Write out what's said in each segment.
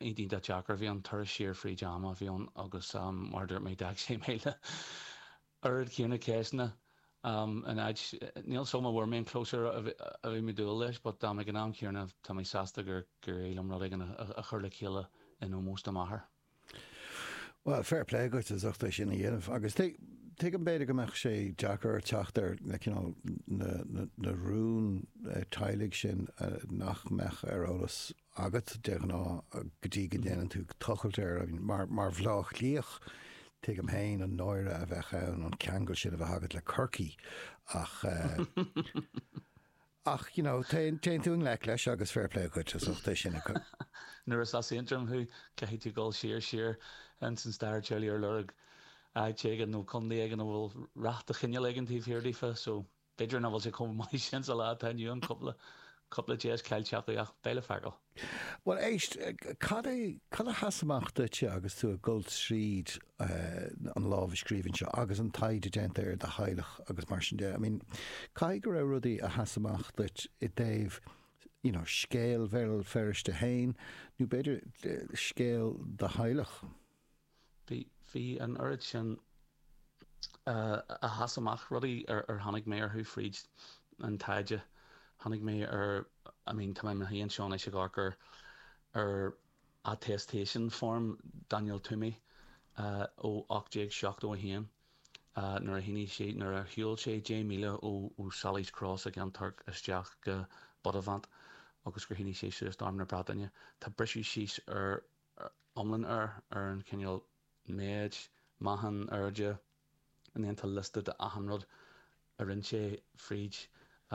Iontach deacair. Bhí an turas siar fríd am a bhí ann agus mar a dúirt mé d'fhág sé mé le oiread céanna ceisteanna. In áit, níl a fhios agam an bhfuair mé an closure a bhí mé ag dúil leis but ag an am céanna tá mé sásta gur éirigh liom rud éigin a chur le chéile in ómós do m'athair. Bhuel, fair play dhuit as ucht é sin a dhéanamh agus tuigim b'fhéidir go mbeadh sé deacair teacht ar na cineál na na rún teaghlaigh sin nach mbeadh ar eolas agat de ghnáth go dtí go ndéanann tú tochailt air. I mean mar mar Bhleá Cliathach tuigim féin an náire a bheadh ann an ceangal sin a bheith agat le Corcaigh ach eh Ach, you know, téann tú i ngleic leis agus fair play dhuit as ucht é sin a. Nuair is as Aontroim thú, caithfidh tú dul siar, siar ins an stair teaghlaigh ar lorg áit éigin nó contae éigin a bhfuil rath de chineál éigin taobh thiar daofa. So, b'fhéidir nach bhfuil sé chomh maith sin sa lá atá inniu ann, cúpla, cúpla deis caillte acu ach beidh le feiceáil. Bhuel, éist, cad é, cad a sheas amach duitse agus tú ag dul tríd an lámhscríbhinn seo agus an taighde déanta ar do theaghlach agus mar sin de? I mean, caithfidh go raibh rudaí a sheas amach duit i dtaobh, you know, scéal Bhéal Feirste fhéin nó b'fhéidir scéal do theaghlach. Bhí an oiread sin a sheas amach, rudaí ar tháinig mé orthu fríd an taighde. Tháinig mé ar, I mean, tá mé i mo shuí anseo anois ag amharc ar attestation form Daniel Twomey ó 1871 nuair a shínigh sé, nuair a shiúil sé 10 míle ó Sally's Cross i gCeann Toirc isteach go Buttevant agus gur shínigh sé suas d'Arm na Breataine. Tá briseadh síos ar. ar iomlán ar ar an chineál méid meáchan airde a ndéantar liosta de achan rud a rinne sé fríd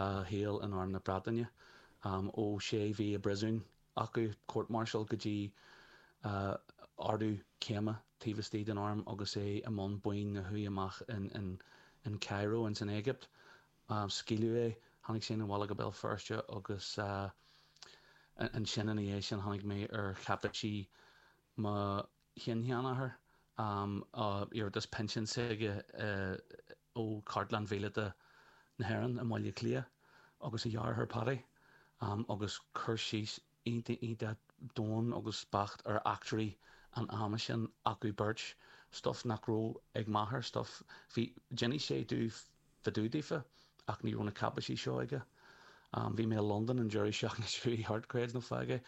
a shaol in arm na Breataine ó sé mhí i bpríosún acu court martial go dtí ardú céime taobh istigh den arm agus é i mbun baint na huaighe amach in Cairo ins an Éigipt Má scaoileadh é, tháinig sé 'na bhaile go Béal Feirste agus ansin ina dhiaidh sin tháinig mé ar cháipéisí mo shin-sheanathair, iarratas pinsin s'aige ó Chartlann Mhíleata na hÉireann i mBaile Átha Cliath, agus a dheartháir Paddy, agus cur síos Iontach iontach domhain agus beacht ar eachtraí an ama sin acu beirt, stuif nach raibh ag m'athair, stuif, bhí, d'inis sé domh fá dtaobh daofa ach ní raibh na cáipéisí seo aige. Bhí mé i Londain an deireadh seachtaine seo thart, creid nó fág é,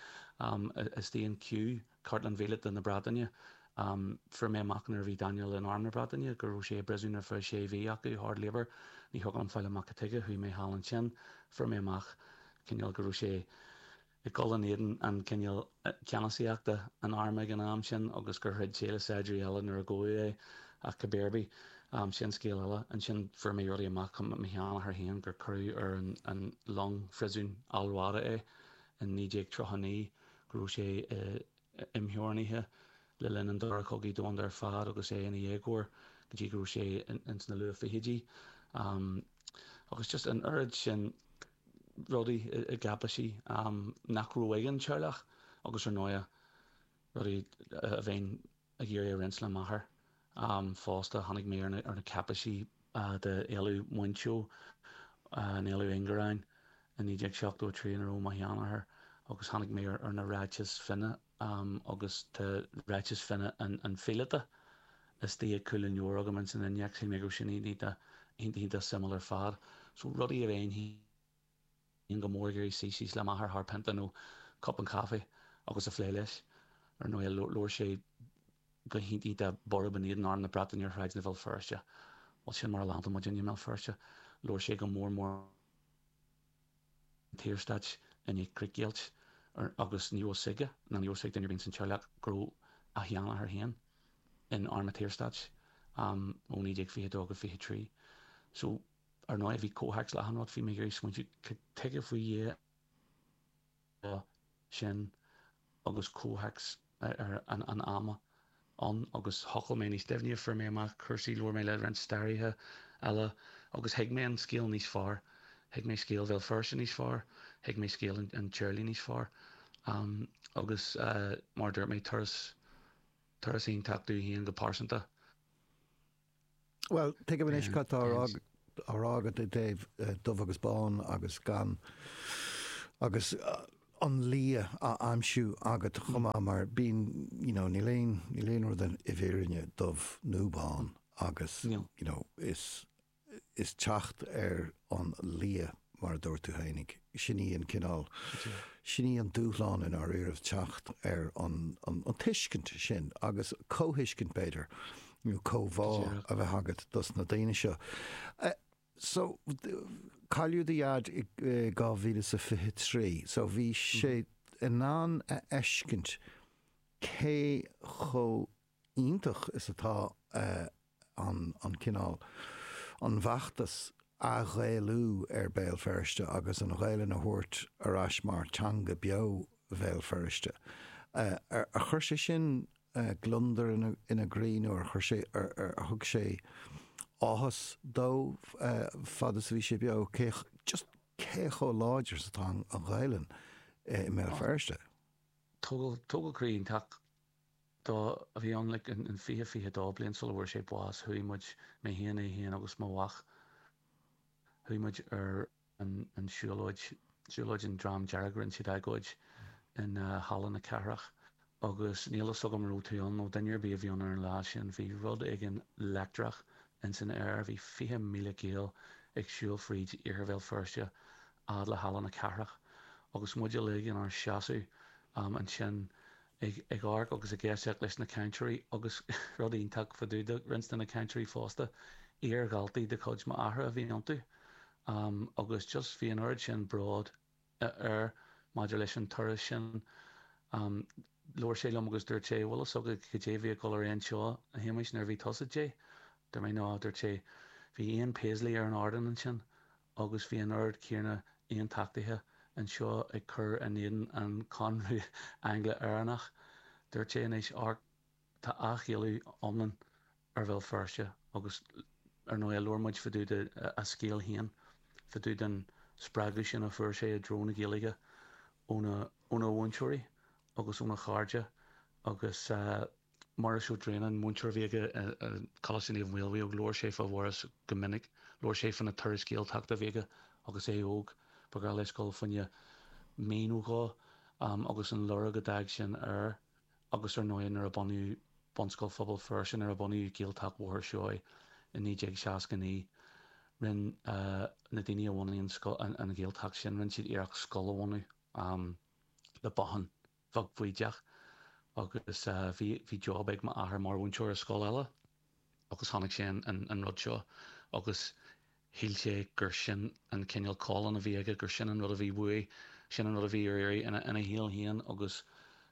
istigh in Kew. cartlann mhíleata na Breataine. Fuair mé amach nuair a bhí Daniel in Arm na Breataine go raibh sé i bpríosún ar feadh sé mhí acu, hard labour. Ní thiocfadh liom fáil amach cad tuige, chuaigh mé thall ansin. Fuair mé amach cineál go raibh sé ag dul in éadan an cineál ceannasaíochta an Airm ag an am sin agus gur throid sé le saighdiúirí eile nuair a gabhadh é ach cibé ar bith, sin scéal eile. Ansin fuair mé rudaí amach fá mo sheanathair féin gur cuireadh ar an long phríosúin Al Rawdah é in 1939. go raibh sé imtheorannaithe le linn an Dara Cogaidh Domhanda ar fad agus é ina dhéagóir go dtí go raibh sé ins na luath-fhichidí agus just an oiread sin rudaí i gcáipéisí nach raibh ag an teaghlach agus ar ndóighe rudaí a bheinn ag iarraidh a roinnt le m'athair. Fosta, tháinig mé ar na cáipéisí d'Éalú Mhuinseo, an Éalú Ingearáin, i 1973 ina raibh mo sheanathair agus tháinig mé ar na ráitis finné agus tá ráiteas finné an phíolóta istigh ag cúl an leabhair agam ins an innéacs. Shíl mé go raibh sin iontach suimiúil ar fad. So, rudaí a bheinn. go mór ag iarraidh suí síos le m'athair thar pionta nó cupán caife agus a phlé leis. Ar ndóigh, labhair sé go hiontach borb in éadan arm na Breataine ar shráideanna Bhéal Feirste. Bhuel, sin mar a leanfaidh muid i mBéal Feirste. Labhair sé go mór mór an tSaorstáit i ndiaidh críochdheighilt agus ní raibh 's aige, ná ní raibh 's ag duine ar bith insan teaghlach go raibh a sheanathair féin in arm an tSaorstáit ó 1922 go 23. So. Ar ndóigh bhí comhthéacs leathan agat, bhí mé ag iarraidh smaointiú tuige faoi Dhia atá sin agus comhthéacs an ama ann agus thochail mé níos doimhne, fuair mé amach cúrsaí, labhair mé le roinnt staraithe eile agus thuig mé an scéal níos fearr, thuig mé scéal Bhéal Feirste níos fearr, thuig mé scéal an teaghlaigh níos fearr agus mar a dúirt mé turas iontach dom fhéin go pearsanta. Bhuel, tuigim anois cad tá á rá agat i dtaobh dubh agus bán agus gan agus an liath á aimsiú agat chomh maith mar bíonn you know níl aon níl aon rud i bhfírinne dubh nó bán agus you know is is teacht ar an liath mar a dúirt tú fhéinig. Sin í an cineál, sin í an dúshlán i ndáiríribh, teacht ar an tuiscint sin agus comhthuiscint b'fhéidir, nó comhbhá a bheith agat dos na daoine seo. So, cailleadh do Dhaid i 2023, so bhí sé in ann a fheiscint cé chomh iontach is atá an cineál, an bhfeachtas athghaelú ar Béal Feirste agus an Ghaelainn a thabhairt ar ais mar teanga beo Bhéal Feirste. Ar chuir sé sin gliondar ina gcroí nó ar chuir sé, ar thug sé áthas dó fad is a bhí sé beo cé, just cé chomh láidir is atá an Ghaelainn i mBéal Feirste? Tógáil croí iontach dó a bhí ann like in in fiche fiche dó bliain sula bhfuair sé bás chuaigh muid, mé féin, é féin agus mo mhac, chuaigh muid ar an an siúlóid, siúlóid an Dream Dearg, rinne siad agóid in Halla na Cathrach agus níl fhios agam an raibh tú ann nó duine ar bith a bhí ann ar an lá sin, bhí rud éigin leictreach ins an aer, bhí fiche míle Gael ag siúl fríd Iarthar Bhéal Feirste a fhad le Halla na Cathrach agus muid uilig inár seasamh ansin ag amharc agus ag éisteacht leis na cainteoirí agus rud iontach fá dtaobh de roinnt de na cainteoirí fosta, iar-dhaltaí de chuid m'athara a bhí iontu agus just bhí an oiread sin bród air maidir leis an turas sin. Labhair sé liom agus dúirt sé, bhfuil fhios agat cad é bhí ag dul ar aghaidh anseo, a Shéamuis, nuair a bhí tusa 10? Dúirt mé, no, dúirt sé, bhí Ian Paisley ar an ardán ansin agus bhí an oiread céanna aontachtaithe anseo ag cur in éadan an Conradh Angla-Éireannach. Dúirt sé anois, amharc, tá athghaelú iomlán ar Bhéal Feirste agus ar ndóigh labhair muid fá dtaobh de a scéal féin fá dtaobh den spreagadh sin a fuair sé i dtreo na Gaeilge óna mhúinteoirí agus óna chairde agus Muiris Ó Droighneáin, múinteoir a bhí aige i gColáiste Naomh Maolmhaodhóg, labhair sé fá Mhuiris go minic. Labhair sé fá na turais Gaeltachta a bhí aige agus é óg. Ba ghnách leis dul faoina mhionn ó dho agus an lorg a d'fhág sin air agus ar ndóigh nuair a bunaíodh Bunscoil Phobal Feirste, nuair a bunaíodh Gaeltacht Bhóthar Seoighe i 1969, rinn na daoine a bhunaigh an Ghaeltacht sin, rinn siad iarracht scoil a bhunadh le bothán. bheag bhaoideach agus bhí job ag m'athair mar mhúinteoir i scoil eile agus chonaic sé an rud seo agus shíl sé gur sin an cineál calling a bhí aige, gur sin an rud a bhí uaidh, sin an rud a bhí ar iarraidh ina shaol féin agus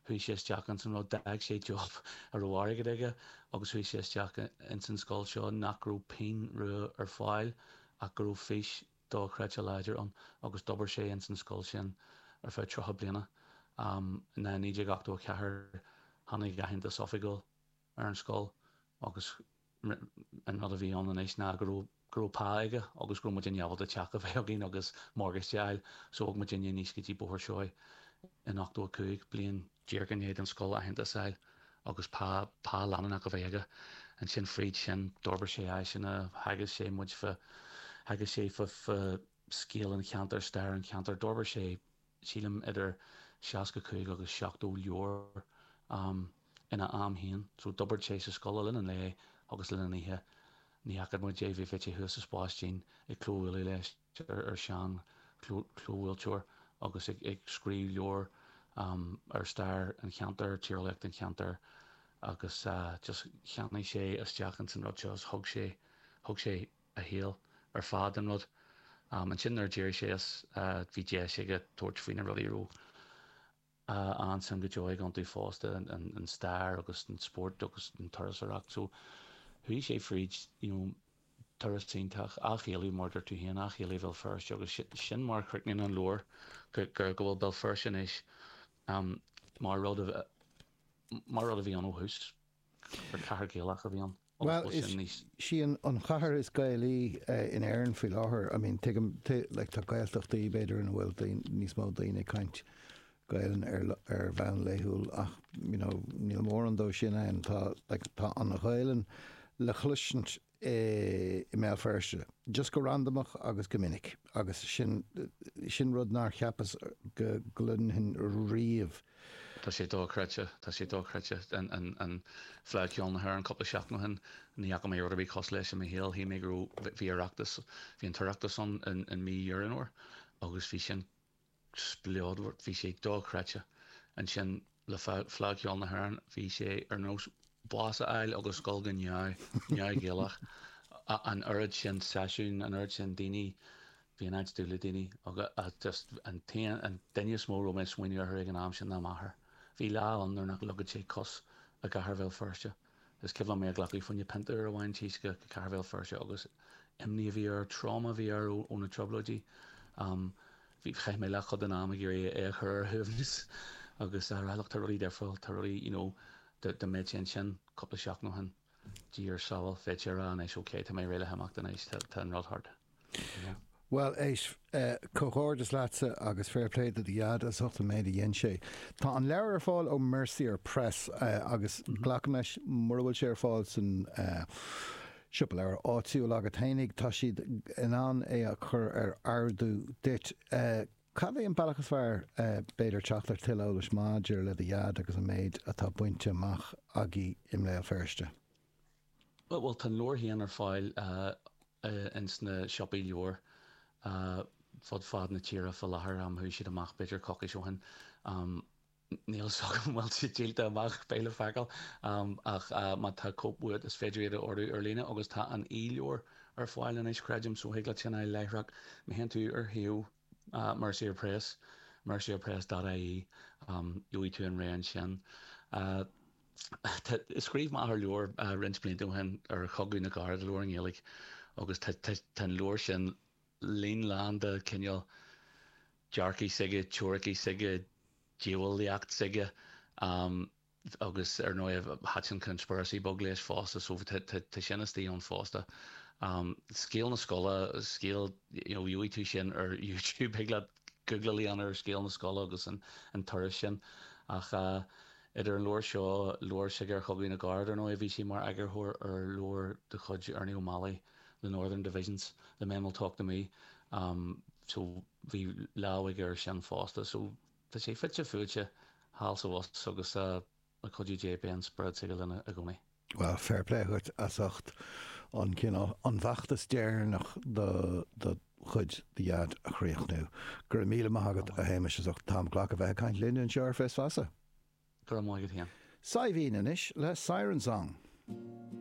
chuaigh sé isteach ins an rud. D'fhág sé job a raibh airgead aige agus chuaigh sé isteach ins an scoil seo nach raibh pingin rua ar fáil ach go raibh fís dochreidte láidir ann agus d'obair sé ins an scoil sin ar feadh tríocha bliana. Um 1984 tháinig aitheantas oifigiúil ar an scoil agus an rud a bhí ann anois ná go raibh go raibh pá aige agus go raibh muid in ábalta teach a bheith againn agus morgáiste a fháil so bhog muid aníos go dtí Bóthar Seoighe in 85 bliain díreach i ndiaidh don scoil aitheantas a fháil. agus pá, pá leanúnach a bheith aige. Ansin fríd sin, d'fhorbair sé áiseanna, theagasc sé muid fa, theagasc sé fa, fa scéal an cheantair, stair an cheantair. D'fhorbair sé, sílim, idir seasca cúig agus seachtó leabhar ina am féin. So, d'oibrigh sé sa scoil le linn an lae agus le linn an oíche. Ní fhaca muid é, bhí, bhí sé thuas sa Spáistín ag clóbhualadh leis. tear ar shean chlóbhuailteoir agus ag scríobh leabhar ar stair an cheantair, tíreolaíocht an cheantair agus just cheannaigh sé isteach ins an rud seo is thug sé, thug sé a shaol ar fad don rud. Ansin nuair a d'éirigh sé as bhí deis aige tabhairt faoi na rudaí a raibh. an-suim go deo aige iontu fosta an stair agus an spórt agus an turasóireacht so chuaigh sé fríd you know turas iontach ag ceiliúradh mar a dúirt tú féin ag ceiliúradh Bhéal Feirste agus sin mar a chríochnaíonn an leabhar go go go bhfuil Béal Feirste anois mar a rud a mar a rud a bhí ann ó thús. Gur cathair Gaelach a bhí ann agus go bhfuil sin níos. Bhuel, is í an chathair is Gaelaí in Éirinn faoi láthair. I mean, tuigim, like, tá Gaeltachtaí, b'fhéidir, ina bhfuil níos mó daoine ag caint Gaelainn ar bhonn laethúil ach, you know, níl mórán dó sin ann. Tá, like, tá an Ghaelainn le cloisint i mBéal Feirste, just go randamach agus go minic agus sin rud nár cheapas go gcluinfinn riamh. Tá sé dochreidte, tá sé dochreidte. An Fleadh Cheoil na hÉireann cúpla seachtain ó shin, ní fhaca mé rud ar bith cosúil leis i mo shaol. Shíl mé go raibh, bhí Oireachtas, bhí an tOireachtas ann i mí Dheireadh Fómhair agus bhí sin, spleodar, bhí sé dochreidte. Ansin le Fleadh Cheoil na hÉireann bhí sé ar nós bás a fháil agus dhul go neamh, neamh Ghaelach. An oiread sin seisiún, an oiread sin daoine, bhí an áit dubh le daoine agus just an t-aon, an duine is mó a raibh mé ag smaoineamh orthu ag an am sin ná m'athair. Bhí lá ann nuair nach leagfadh sé cos i gcathair Bhéal Feirste. Is cuimhin liom é a ghlacadh fá choinne pionta ar a mhí-ín tíosctha go cathair Bhéal Feirste agus imní a bhí air, tráma a bhí air ó na Trioblóidí. Bhí, chaith mé leathchuid den am ag iarraidh é a chur ar a shuaimhneas agus a rá, look, tá rudaí difriúil, tá rudaí, you know, dá mbeadh sé ansin cúpla seachtain ó shin, Dia ar sábháil, bheadh sé ag rá anois, okay, tá mé réidh le himeacht anois, tá an rud thart. Bhuel, éist, comhghairdeas leatsa agus fair play do do Dhaid as ucht an méid a dhein sé. Tá an leabhar ar fáil ó Mercier Press agus glacaim leis, mura bhfuil sé ar fáil san siopa leabhar áitiúil agat fhéinig, tá siad in ann é a chur ar ordú duit. Cad é an bealach is fearr, b'fhéidir, teacht ar tuilleadh eolais maidir le do Dhaid agus an méid atá bainte amach aige i mBéal Feirste? Bhuel, tá an leabhar féin ar fáil ins na siopaí leabhar fud fad na tíre fá láthair. Chuaigh siad amach b'fhéidir coicís ó shin. Níl a fhios agam an bhfuil siad díolta amach, beidh le feiceáil, ach má tá cóip uait is féidir iad a ordú ar líne agus tá an e-leabhar ar fáil anois creidim so thig leat sin a fháil láithreach. Má théann tú ar shuíomh Mercier Press, mercierpress dot ie, Gheobhaidh tú an réimse ansin. Scríobh m'athair leabhar roinnt blianta ó shin ar Chogadh na gCarad, leabhar i nGaeilge, agus tá an leabhar sin líon lán de chineál dearcadh s'aige, teoiricí s'aige, diabhalaíocht s'aige. agus ar ndóigh thaitin conspiracy beag leis fosta so tá sin istigh ann fosta. Scéal na scoile, scéal you know gheobhaidh tú sin ar youtube thig leat googláil a dhéanamh ar scéal na scoile agus an turas sin ach eh idir an leabhar seo, leabhar s'aige ar Chogadh na gCarad, ar ndóigh bhí sé mar eagarthóir ar leabhar de chuid Ernie O'Malley The Northern Divisions, The Men Will Talk To Me so bhí lámh aige air sin fosta so. Tá sé fite fuaite thall is abhus agus le cuidiú Dé beidh an spiorad s'aige linn i gcónaí. Bhuel, fair play dhuit as ucht an cineál, an feachtas deireanach do do chuid, do dhaid, a chríochnú. Go raibh míle maith agat, a Shéamais, as ucht an t-am a ghlacadh a bheith ag caint linn anseo ar Fios Feasa. Go raibh maith agat féin. Saibhín anois le Siren Song.